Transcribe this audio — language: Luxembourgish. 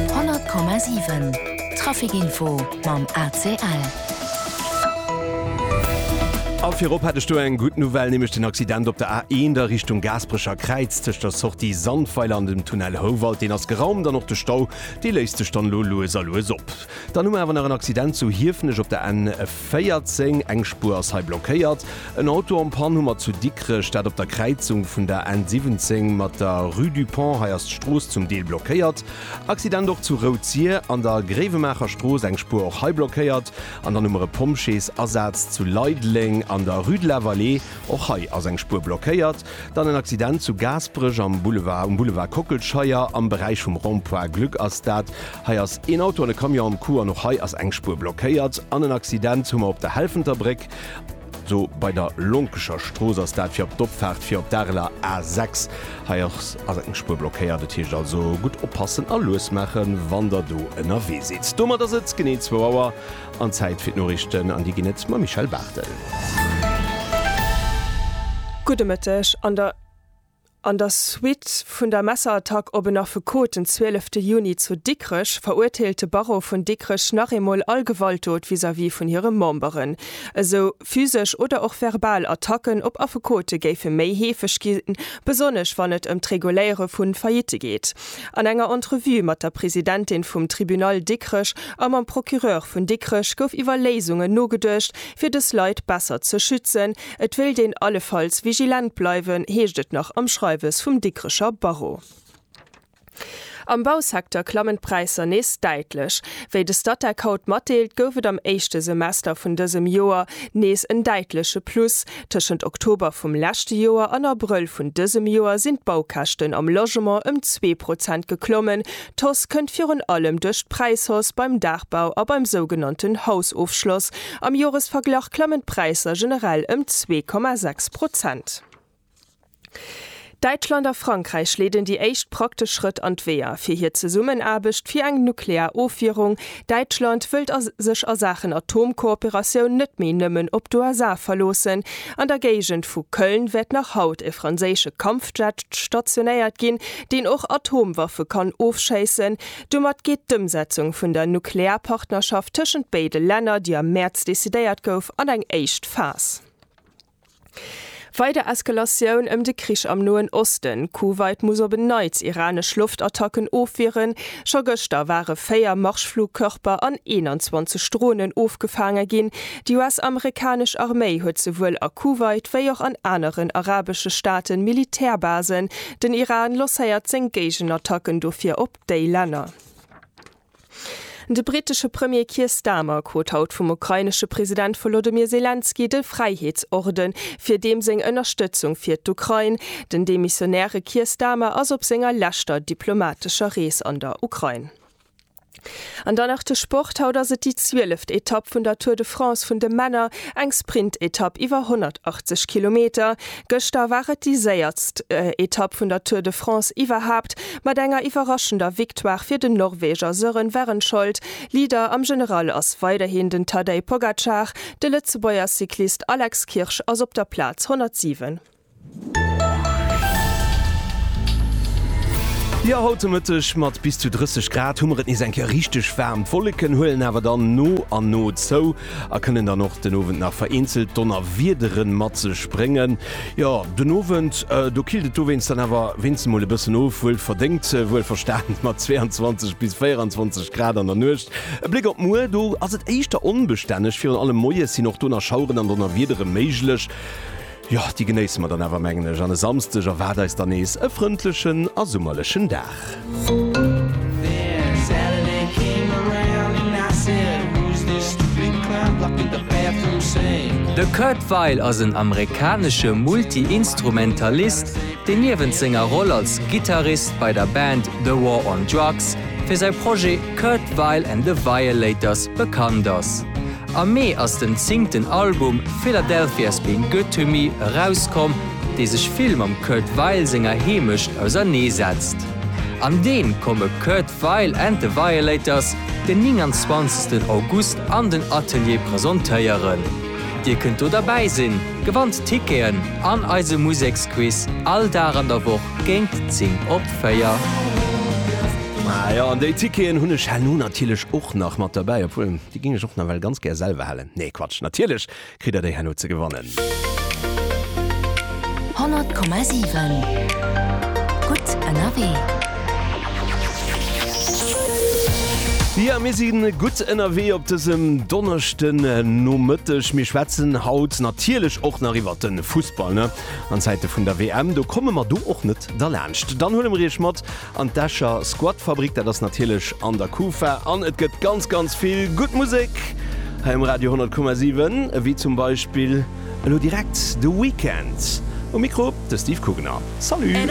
100,7 Trafic Info mam ACL. A virop hätt ech do eng gutt Nouvelle, nämlech den Accident op der A1 a Richtung Gaasperecher Kräiz tëscht der Sortie Sandweiler an dem Tunnel Houwald, deen ass geraumt an och de Stau, dee léisst sech dann elo lues a lues op. Dann hu mer awer nach en Accident zu Hiefenech op der N. 14, Eng Spuer ass hei blockéiert. En Auto en panne hu mer zu Dikrech, dat op der Kräizung vun der N 17 mat der Rue du Pont. Hei ass d'Strooss zum Deel blockéiert. Accident och zu Rouzier an der Gréiwemaacher Strooss, eng Spuer och hei blockéiert. An dann hu mer e Pompjeesasaz zu Leideleng an der Rue de la Vallée. Och hei ass eng Spuer blockéiert. Dann en Accident zu Gaasperech am Boulevard, um Boulevard Kockelscheier am Beräich vum Rond-point Glück ass dat. Hei ass een Auto an e Camion am Coup an och hei ass eng Spuer blockéiert. An en Accident hu mer op der Helfenter Bréck. Do bei der Lonkecher Strooss ass dat, fir op d'Opfaart fir op d'Areler A6. Hei ass ass eng Spuer blockéiert. Et heescht also gutt oppassen a lues maachen, wann Der do ënnerwee sidd. Domat ass et genee zwou Auer an Zäit fir d'Noriichten an déi ginn et mam Michèle Barthel. Gudde Mëtteg. An der. An der Suite vun der Messerattack op en Affekot den 12 Juni zu Dikrech, verurteelt de Barreau vun Dikrech nach eemol all Gewaltdot vis-à-vis vun hire Memberen. Esou physesch oder och verbal Attacken op Affekote géife méi heefeg ginn, besonnesch wann et ëm d'Reguléiere vu Faillitte geet. An enger Entrevue mat der Presidentin vum Tribunal Dikrech a mam Procureur vun Dikrech gouf iwwer Léisungen nogeduecht, fir dës Leit besser ze schützen, Et wéilt een allefalls vigilent bleiwen, heescht et nach am Schreiwes vum Dikrecher Barreau. Am Bausecteur klammen d'Präisser nees däitlech. Wéi de Statec haut matdeelt, gouf et am éischte Semester vun dësem Joer nees en däitleche Plus. Tëschent Oktober vum leschte Joer an Abrëll vun dësem Joer sinn d'Baukäschten am Logement ëm zwee Prozent geklommen, D'Hausse kënnt virun allem duerch d'Präishausse beim Daachbau a beim sougenannten Hausofschloss. Am Joresverglach klammen d'Präisser generell ëm zwee Komma sechs Prozent. Däitschland a Frankräich leeden déi éischt praktesch Schrëtt an d'Weeër fir hir Zesummenaarbecht fir eng nuklear Ofwierung, Däitschland wëllt a sech a Saachen Atomkooperatioun net méi nëmmen op d'USA verloossen. An der Géigend vu Köln wäert nach haut e franséische Kampfjet stationéiert ginn, deen och Atomwaffe kann ofschéissen. Domat geet d'Ëmsetzung vun der Nuklearpartnerschaft tëschent béide Länner, déi am Mäerz decidéiert gouf, an eng éischt Phas. Weider Eskalatioun ëm de Krich am Noen Osten, Kuwait muss op en Neits iranesch Loftattacken ofwieren, Scho gëschter ware 4 Marschflugkörper an 21 Dronen ofgefaange ginn, Déi US-amerikanesch Arméi huet souwuel a Kuwait wéi och an aneren arabesche Staaten Militärbasen, Den Iran losséiert seng Géigenattacken dofir op déi Länner. De brittesche Premier Keir Starmer krut haut vum ukrainesche President Volodymyr Selenskyj de Fräiheetsorde fir deem seng Ënnerstëtzung fir d'Ukrain. Den demissionäre Keir Starmer ass op senger leschter diplomatescher Rees an der Ukrain. An dann nach de Sport, Haut ass et déi zwieleft Etapp vun der Tour de France vun de Männer, eng Sprintetapp iwwer 180 Kilometer. Gëschter war et déi séiertst Etapp vun der Tour de France iwwerhaapt, mat enger iwwerraschender Victoire fir den Norweger Søren Wærenskjold. Leader am General ass weiderhin den Tadej Pogacar, de Lëtzebuerger Cyclist Alex Kirsch ass op der Plaz 107. Jo, haut de Mëtteg mat bis zu 30 Grad hu mer et nees eng Kéier richteg waarm. D'Wolleken huelen awer dann no an no zou. a kënnen dann och den Owend nach vereenzelt Donnerwiedere mat sech bréngen. Jo, den Owend, do killt et dowéinst dann awer wéinsten mol e bëssen of, wuel verdéngt, wuel verstanen, mat 22 bis 24 Grad an der Nuecht. E Bléck op muer, do ass et éischter onbestänneg, virun allem moies sinn och do nach Schaueren an Donnerwiedere méiglech. Jo, déi genéisse mer dann awer, mengen ech. An e Samsdeg erwaart eis dann nees e frëndlechen a summerlechen Dag. De Kurt Weill ass en amerikanesche Multi-Instrumentalist, deen niewent senger Roll als Gittarist bei der Band The War on Drugs fir säi Projet Kurt Weill and the Violators bekannt ass. Am Mee ass den zéngten Album Philadelphia's Been Good To Me erauskomm, dee sech vill mam Kurt Weill senger Heemecht ausernee setzt. An deem komme Kurt Weill and The Violators den 29 August an den Atelier presentéieren. Dir kënnt do derbäi sinn, gewannt Ticketen an eise Museksquiz all Dag an der Woch géint 10 op 4. Ah jo, an déi Ticketen hunn ech herno natierlech och nach mat derbäi, obwuel. Déi ging ech och nawell ganz gär selwer hellen. Nee Quatsch, natierlech kritt der déi herno ze gewannen. 100,7 gutt ënnerwee. Jo mir si gutt ënnerwee op dësem Donneschden Nomëtteg. Mir schwätzen haut natierlech och nach iwwert de Fussball, ne? An Zäite vun der WM, do komme mer do och net derlaanscht. Dann huele mer iech mat An d'Escher Squatfabrik, dat ass natierlech an der Kufa an et gëtt ganz ganz vill gutt Musek hei um Radio 10,7, ewéi zum Beispill elo direkt de Weekend. Um Mikro de Steve Kugener. Salut!